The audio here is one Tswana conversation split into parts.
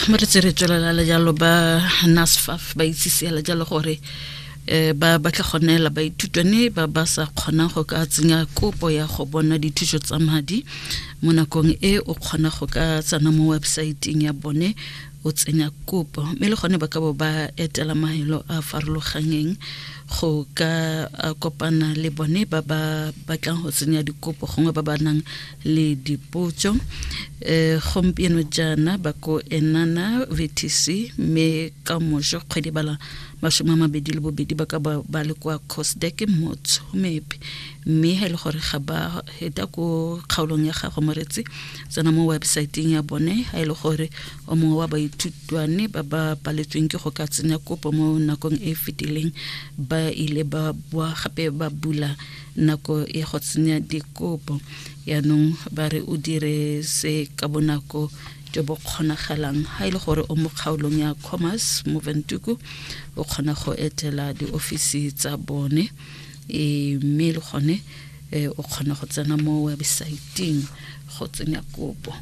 mo re tse re tswelela le jalo ba nasfaf ba itsisiela jalo gore um ba batla go neela baithutwane ba ba sa kgonang go ka tsenya kopo ya go bona dithuso tsa madi mo nakong e o kgona go ka tsena mo websaeteng ya bone o tsenya kopo mme le gone ba ka bo ba etela mahelo a farologanyeng go ka kopana le bone ba ba batlang go tsenya dikopo gongwe ba ba nang le dipotso um gompieno jaana ba ko enana vtc mme ka moso kgwedi bala masome a mabedi le bobedi ba ka ba le kwa cosdek motshomepe mme ga e le gore ga ba heta ko kgaolong ya gago moretsi tsena mo websaeteng ya bone ga e le gore o mongwe wa baithutwane ba ba paletsweng ke go ka tsenya kopo mo nakong e e fetileng ba ile ba boa gape ba bula nako ya go tsenya dikopo yaanong ba re o dire se ka bonako jo bo kgonagalang ga e le gore o mo kgaolong ya commerce mo ventuku o kgona go etela diofisi tsa bone e mme le gone e, o kgona go tsena mo websaeteng go tsenya kopo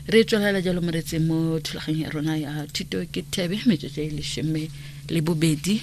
re tswelela jalo moretseng mo thulaganyong ya rona ya thuto ke thebe metsotso e leshome le bobedi